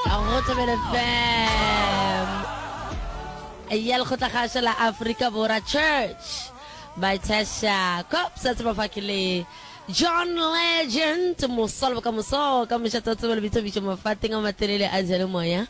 a go tsebele fam ya lekgotlakgaša la aforika bora church baitshasha cops a tseba fa ke le john legend mosa le bokamoso ka mošata o tseba lebitsobišo mafateng a matelele a jale moya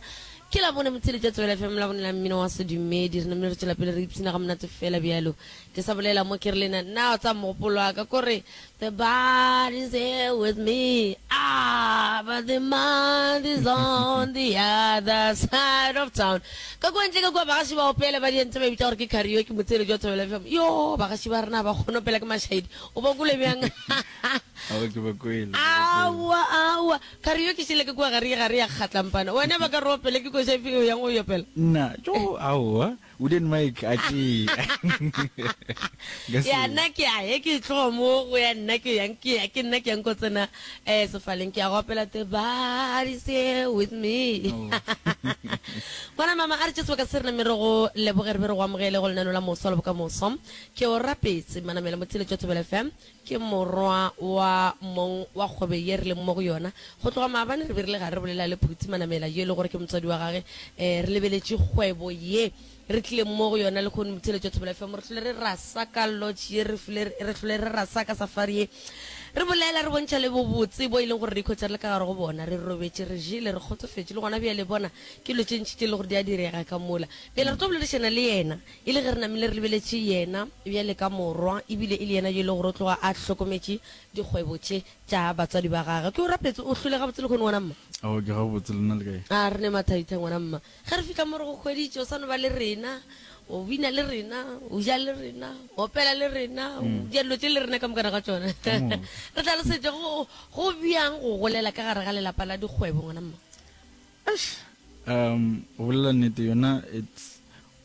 ke la bone motsheletša tsebele fm la bone la mmino wa sedumedi re namele re tšwela pele re ipshina ga monate fela bjalo ke sa bolela mo ke re lena nna o tsa mogopolo wa ka kore The bad is here with me ah, but the month is on the other side of town ka kwa ntle ka kwa bagaši ba opela ba dientse ba bitsa gore ke cario ke motsele jwa thobela fm yo bagaši ba rena ba kgone opela ke mašaedi o ba kole bjang awa awa cario ke šele ke kwa gare gare ya kgatlampana wena ba ka re opele ke koša efeng yang o yopela nna jo aowa U didn't make a tšee. Nka se- ya nna ke ya he ke tloga mo go ya nna ke yang ke ya ke nna ke yang ko tsena eh sefaleng ke ya go opela the body's here with me Oh. ngwana mama a re tše sebaka se re name re go leboge re be re go amogele go lenano la moso le bokamoso ke o rapetse manamela motheletšo thobela fm Ke morwa wa mong wa kgwebe ye re leng mo go yona. Go tloga maabane re be re le gare re bolela le Phuti Manamela yo e le gore ke motswadi wa gage. Re lebeletše kgwebo ye re tlileng mo go yona lehono Motheeletšo Thobela FM. Re hlole re rasa ka lodge ye, re fule re hlole re rasa ka safari ye. Re bolela, re bontšha le bobotse bo e leng gore re ikhwetša re le ka gare go bona. Re robetše, re jele, re kgotsofetše le gona bjale. Bona, ke dilo tše ntši tše e lego gore di a direga ka mola. Bjale re tlo boledišana le yena. E le ge re namile re lebeletše Yena bjale ka Morwa, e bile e le Yena yo e lego gore o tloga a hlokometše dikgwebo tše tša batswadi ba Gagwe. Ke o rapetse o hlwele gabotse lehono, ngwana mma. Aowa, ke gabotse. Lena le kae? A re ne mathaitha, ngwana mma. Ge re fihla mo re go hweditše, o sa no ba le rena, o bina le rena, o ja le rena, o opela le rena, o dira dilo tše le rena ka mokana ga tšona. Re tlhalosetše go go bjang go golela ka gare ga lelapa la dikgwebo, ngwana mma. Eish, umm, go bolela nnete, yona it's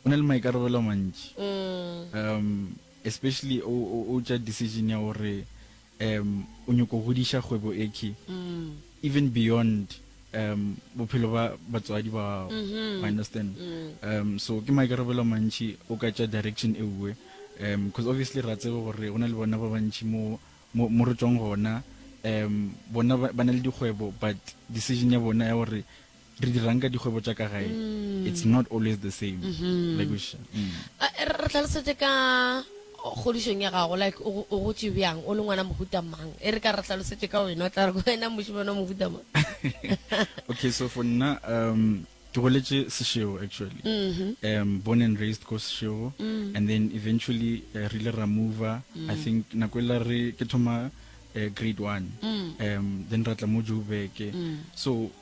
O na le maikarabelo a mantši, um especially o, o, o tša decision ya gore um o nyoko godiša kgwebo ekhi, even beyond um bophelo ba batswadi ba gago. I understand. Um so ke maikarabelo a mantši, o ka tša direction e uwe, um cause obviously ra tseba gore go na le bona ba bantši mo, mo, mo re tšwang gona, um bona ba, ba na le dikgwebo but decision ya bona ya gore re dirang ka dikgwebo tša ka gae mm. it's not always the same mm-hmm. like mm. re tlhalosetse ka kgodišong ya gago like o gotse bjang o le ngwana mohuta mang e re ka re tlhalosetse ka wena o tla re wena mošimane mohuta mang okay so for nna um ke goletse seshego actually mm-hmm. um born and raised ko seshego mm. and then eventually uh, re ile ra mover i mm. think nako e la re ke thoma uh, grade one um then ra tla mo joburg so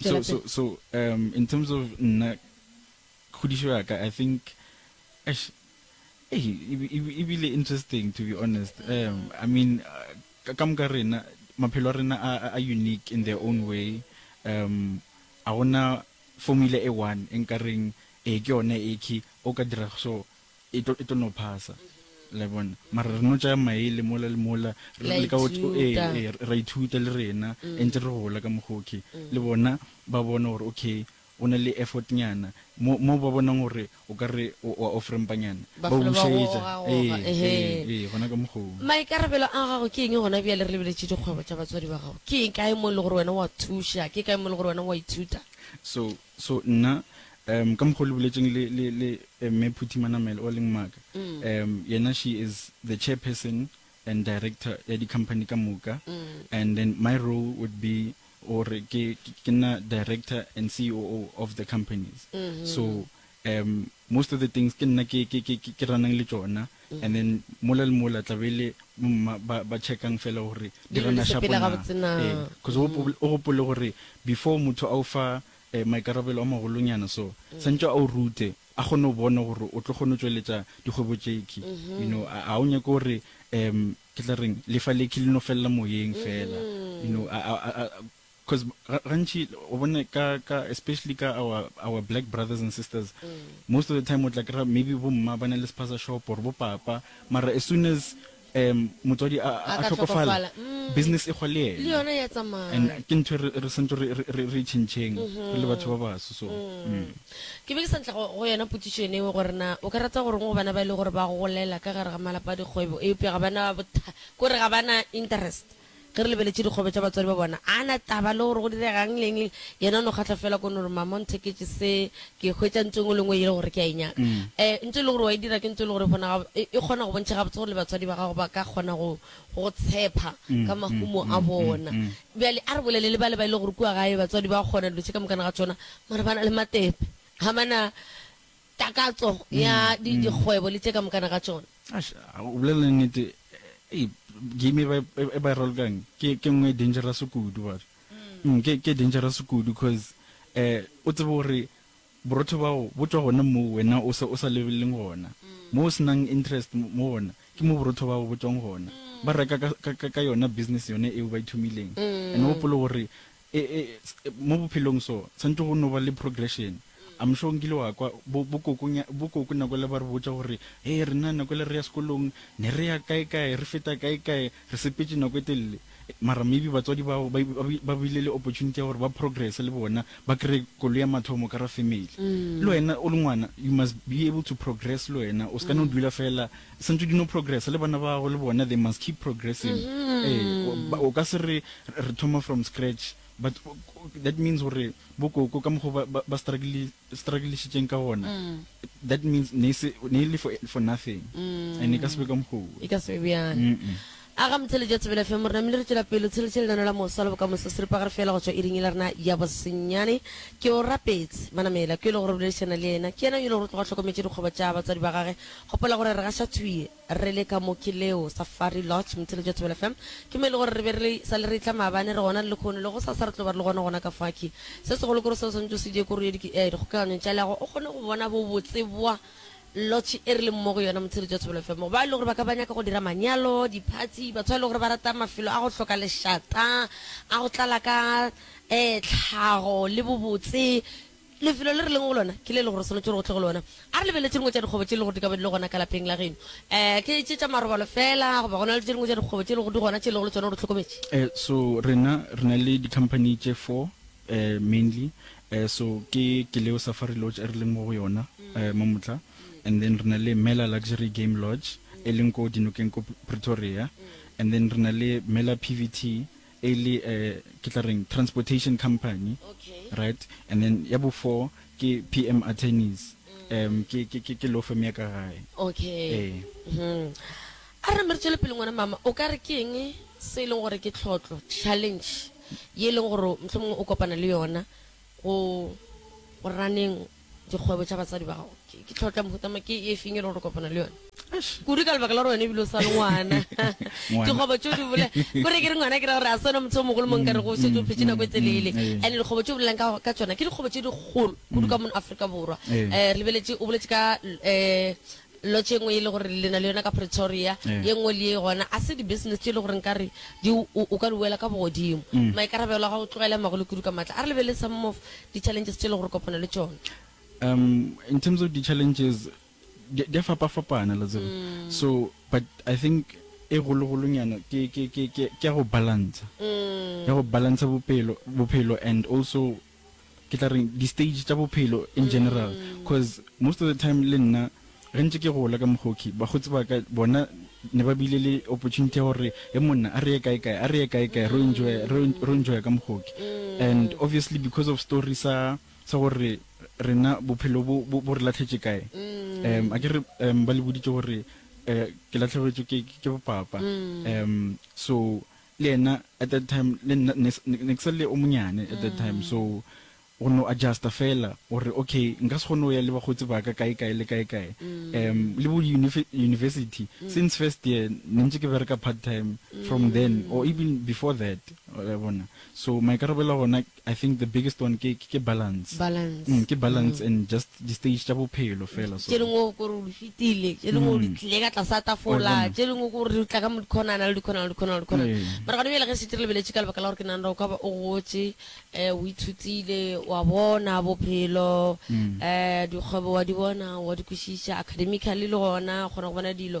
So, so, so, um, in terms of nna, khudišo ya ka, I think, ash, eh, e bile interesting, to be honest. Um, I mean, uh, ka moka rena, maphelo rena a, a unique in their own way. Um, a gona formula e one, enkareng, e ke yone e ki, o ka dira so, e tlo e tlo no phasa le bona mara re no tsaya maele mola le mola re le ka go eh, eh, ra ithuta le rena mm. e ntse re gola ka mogoke mm. le bona ba bona gore okay o na le effort nyana mo mo ba bonang gore o ka re wa offrempanyana ba busetsa eh, eh eh gona ka mogong maikarabelo a gago ke eng gona bjale re lebeletse dikgwebo tša batswadi ba gago ke eng kae mo e le gore wena wa thuša ke kae mo e le gore wena wa ithuta so So nna, um, ka mokgo le boletšeng le, le, le Mme Phuthi Manamela o leng maka, um, yena she is the chairperson and director ya di company ka moka, and then my role would be gore ke, ke nna director and COO of the companies. So, um, most of the things ke nna ke, ke, ke, ke, ke ranang le tšona. And then mola le mola tla be le bomma ba ba checkang fela gore di Dilo di gana shapo sepela na. gabotse na. Ee, cause o gopo- o gopole gore before motho a o fa eh, maikarabelo a magolonyana so, santšwe a o rute a kgone go bona gore o tlo kgone go tšweletša dikgwebo tšekhwi. You know, a a o nyake gore em ke tla reng lefa lekhwi le no felela moyeng fela. You know, a a a a Cuz gantši o bone ka ka especially ka our our black brothers and sisters most of the time o tla kra maybe bo mma ba na le spaza shop or bo papa mara as soon as um motswadi a a ka hlokofala tlhokofala, mm. business e kgwa le le yena yona ya and tsamaya ke ntho e re re santse re re- re re chentšheng re le batho ba baso so mm. ke be ke sa ntla go go yona potsišo ene ewe gore na o ka rata goreng go bana ba e le gore ba golela ka gare ga malapa a dikgwebo eupša ga bana botha kore ga bana interest Ge re lebeletše dikgobe tša batswadi ba bona, a na taba le gore go diregang le eng le eng, yena o no kgahlwa feela ko no re, Mama o ntheketše se, ke e hwetša ntho e nngwe le e nngwe yele gore ke a e nyaka. E ntho e le gore wa e dira ke ntho e le gore e bona gab-, e kgona go bontšha gabotse gore le batswadi ba gago ba ka kgona go go go tshepa ka mahumo a bona. Bjale a re bolele le bale ba e lego gore kua gae batswadi ba kgona dilo tše ka mokana ga tšona mara ba na le matepe, ga ba na. Takatso ya di dikgwebo le tše ka mokana ga tšona. Ash, o bolela nnete, ei, game e ba e ba e ralokang ke ke nngwe e dangerous kudu batho. Mm, ke ke dangerous kudu cause eh o tsebe gore borotho bao bo tswa gona moo wena o sa o sa lebelleng gona. Mo o senang interest mo mo gona ke mo borotho bao bo tswang gona. Ba reka ka ka ka ka yona business yone eo ba ithomileng. And o gopole gore E, e, e, mo bophelong so, tshwanetse go no ba le progression. I'm sure nkile wa kwa, bo, bo koko, bo koko nako ele ba re botša gore, Hei, rena nako ele re ya sekolong, ne re ya kae kae, re feta kae kae, re sepetše nako e telele. Mara maybe batswadi bao ba, ba, ba bile le opportunity ya gore ba progresse le bona, ba kreye koloi ya mathomo ka ra family. Le wena o le ngwana, you must be able to progress le wena, o se ka no dula feela Santse di no progressa le bana ba gago le bona they must keep progressing. Ee, ba- o ka se re re re thoma from scratch but o- o- that means gore bo koko ka mokgo ba- ba ba struggle strugglishitseng ka gona that means ne e se ne e le for for nothing and e ka se be ka mokgo o. E ka se be bjang. Mm-mm. A ga motheletše a tsebela FM rena mmele re tšwela pele o tsheletše lenano la moswa le bokamoso seripa ga re fela go tšwa iring yela rena ya bosenyane ke o rapetse banamedi la ko yelo gore boledišana le yena ke yena yelo gore tloga hlokometše dikgwebo tša batswadi ba gage gopola gore re gaša thwi re le ka mo ke leo safari lodge motheletše a tsebela FM ke mo e le gore re be re sa le re tla maabane re gona le lekgono le go sa sa re tlo ba re le gona gona ka faki se segolo kore se o swanetše o se die kore o ye di dikgokaganyong tša leago o kgone go bona bo botse bwa Lotšhe e re leng mo go yona Motsheletsi wa Thobela FM, go bao e lego gore ba ka ba nyaka go dira manyalo, diphatsi, batho ba e lego gore ba rata mafelo a go hloka lešata, a go tlala ka tlhago le bobotse. Lefelo le re leng go lona ke le e lego gore o swanetše gore o tle go lona a re lebeletše dingwe tša dikgwebo tše e lego gore di ka ba di le gona ka lapeng la geno. Ke tše tša marobalo feela goba go na le tše dingwe tša dikgwebo tše e lego gore di gona tše e lego gore le tšona o di hlokometše? So rena re na le di-company tše four. eh, mainly eh, so ke ke leo safari lodge e re leng mo go yona eh, mo motla and then re na le mela luxury game lodge e leng ko dinokeng ko pretoria and then re na le mela pvt e le eh, ke tla reng transportation company okay right and then ya bo four ke pm attorneys um ke ke ke ke law firm ya ka gae okay Eh. Mhm. A re mme re tšwele pele ngwana mama. O ka re ke eng se e leng gore ke tlhotlo, challenge, ye e leng gore mohlomongwe o kopana le yona go go raneng dikgwebo tša batsadi ba gago? Ke ke tlhotlo ya mohuta mang? Ke e feng e leng gore o kopana le yona? Eish, kudu ka lebaka la gore wena e bile o sa le ngwana. Ngwana. Dikgwebo tše o di bolela, ko re ke re ngwana ke ra gore ga se wena motho yo mogolo mo nka rego o šetše o phetše nako e telele. Ee. And-e dikgwebo tše o bolelang ka ka tšona ke dikgwebo tše dikgolo kudu ka mono Afrika Borwa. Ee. Um re lebeletše, o boletše ka um Lotš ye nngwe e le gore le na le yona ka Pretoria, ye nngwe le ye gona, a se di-business tše e le gore nka re di, o, o ka di wela ka bogodimo. Maikarabelo a gago tlogela magolo kudu ka matla. A re lebelele some of di-challenges tše e le gore o kopana le tšona. Um, in terms of di-challenges, di, di a fapafapana, la tseba. So, but I think e kgolokgolonyana ke, ke, ke, ke, ke ya go balantsha, ya go balantsha bopelo, bophelo and also ke tla reng, di-stage tša bophelo in general, coz most of the time le nna ge ntše ke gola ka Mogokhi, bakgotsi ba ka bona ne ba bile le opportunity ya gore he monna a re ye kae kae, a re ye kae kae, ro enjoy, ro enjoy ka Mogokhi. And obviously because of story sa sa gore rena bophelo bo bo re lahletše kae, um akere um ba le boditše gore um ke lahlegetšwe ke ke bopapa, um so le yena at that time le nna ne ne ne ke sa le o monyane at that time so go no adjusta fela gore okay nka se kgone go ya le bakgotsi ba ka kae kae le kae kae um le bo university since first year ne ntse ke bereka part time from then or even before that wa bona so maikarabelo a gona I think the biggest one ke ke balance balance mm ke balance mm. and just di stage tša bophelo fela so tše dingwe o kore o di fetile tše dingwe o di mm. tlile ka tlasa tafola tše dingwe ko re tla ka mo dikhonana le dikhonana le dikhonana le dikhonana mara gone bjale ge setse re lebeletše ka lebaka la gore ke nang ra o ka ba o gotše um o ithutile wa bona bophelo um dikgwebo wa di bona wa di kwešiša academically le gona kgona go bona dilo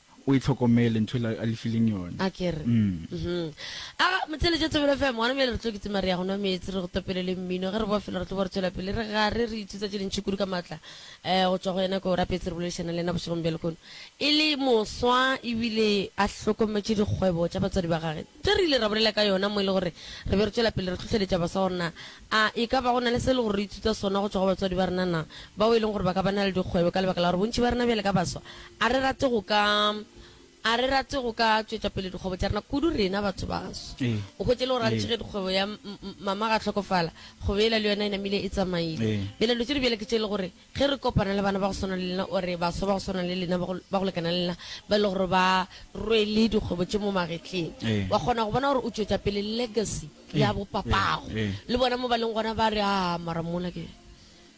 O e hlokomele ntho ela a le fileng yona. Akere? Uhmm. Aga, motheeletša Thobela FM, gona bjale re tlo kitima re ya go nwa meetse, re go topele le mmino. Ge re boa felo re tlo boa re tšwela pele re gare, re ithuta tše dintši kudu ka maatla eh go tšwa go yena. Ke Orapetse re boledišana le yena bošegong bja lehono e le moswa ebile a hlokometše dikgwebo tša batswadi ba gage. tše re ile ra bolela ka yona mo e le gore re be re tšwela pele re hlohleletša bafsa gore na a e ka ba go na le se e le gore re ithuta sona go tšwa go batswadi ba rena, na bao e leng gore ba ka ba na le dikgwebo ka lebaka la gore bontši ba rena bjale ka bafsa a re rate go ka a re rate go ka tšwetša pele dikgwebo tša rena kudu rena batho baso. O hwetše e le gore gantši ge dikgwebo ya Mama ga hlokofala, kgwebo yela le yona e namile e tsamaile. Bjale dilo tše di bjale ke tše e le gore Ge re kopana le bana ba go swana le lena or baswa ba go swana le lena, ba go, ba go lekana le lena, ba e le gore ba rwele dikgwebo tše mo magetleng, Ee. wa kgona go bona gore o tšwetša pele legacy Ee, ya bo papago. ee, ee. Le bona mo ba leng gona ba re, Aa, mara mola ke,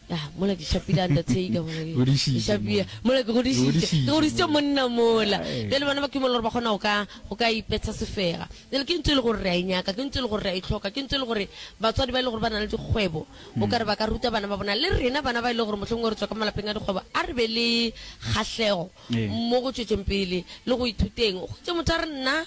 ya, mola ke šapile undertaker, mola ke, Godišitše ke šapile, mola. mola ke godišitše, ke Godišitše godišitše mola. monna mola. Ee. Bjale bana ba kimollo gore ba kgona go ka, go ka ipetsha sefega. Bjale ke ntho e le gore re a e nyaka, ke ntho e le gore re a e hloka, ke ntho e le gore batswadi ba e le gore ba na le dikgwebo, O ka re ba ka ruta bana ba bona. Le rena bana ba e lego gore mohlomongwe re tšwa ka malapeng a dikgwebo, a re be le kgahlego Ee. mo go tšwetšeng pele le go ithuteng. O hwetše motho a re, Nna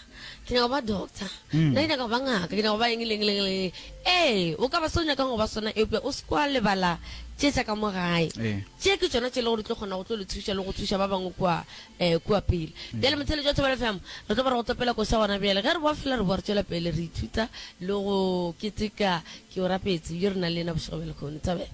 ke nyaka go ba doctor, nna ke nyaka go ba ngaka, ke nyaka go ba eng le eng le eng le eng. Ee, o ka ba se o nyakang go ba sona, eupša o se ke wa lebala tše tša ka mo gae. Ee. Tše ke tšona tše e lego gore di tlo kgona go tlo le thuša le go thuša ba bangwe kua Ee, kua pele. Bjale motheeletši wa thobela fihla mo. Re tlo ba re go topela koša gona bjale. Ge re boa fela, re boa re tšwela pele re ithuta le go keteka. Ke o rapetse, yo re nang le yena bošego bja lekhono. Thabela.